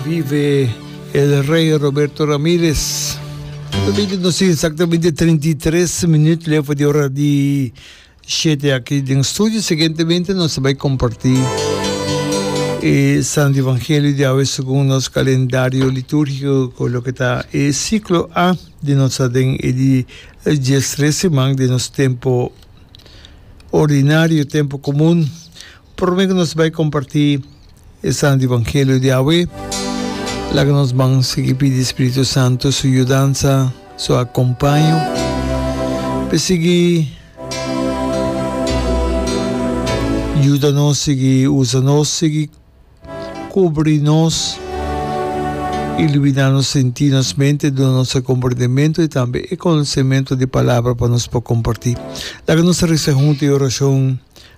Vive el rey Roberto Ramirez. Lo bini nos tin exactamente 33 minut lefo di ora di shete aki den studio. Siguientemente nos bai comparti e Santo Evangelio di awe segun nos calendario liturgico cu loke ta e ciclo A di nos den e di dies tres siman den nos tempo ordinario, tempo comun. Prome cu nos bai comparti. Esnan di Evangelio di awe, laga nos ban sigui pidi Spiritu Santu su yudansa, su akompaño, p'e sigui yuda nos, sigui usa nos, sigui kubri nos, ilibiná nos sentí, nos mente, duna nos e komprendementu i tambe e konosementu di palabra pa nos por kompartí. Laga nos resa huntu i orashon.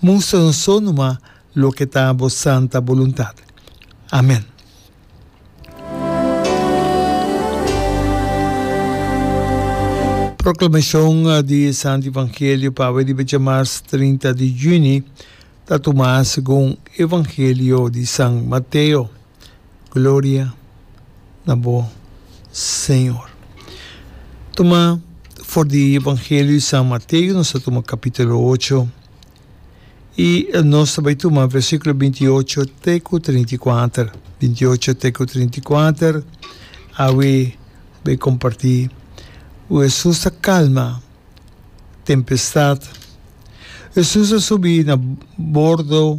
Mustra nos so numa loke ta bo santa boluntad. Amen. Proclamacion di Santo Evangelio pawe di becha mars trinta di juni ta tuma segun Evangelio di San Mateo. Gloria na bo Señor. Tuma for di Evangelio di San Mateo nos ta tuma capitulo ocho y nos ta bay tuma versiculo binti y ocho te cu trinta y kuater, binti y ocho te cu trinta y kuater awe bay comparti cu Jesus ta calma tempestad, Jesus a subi na bordo.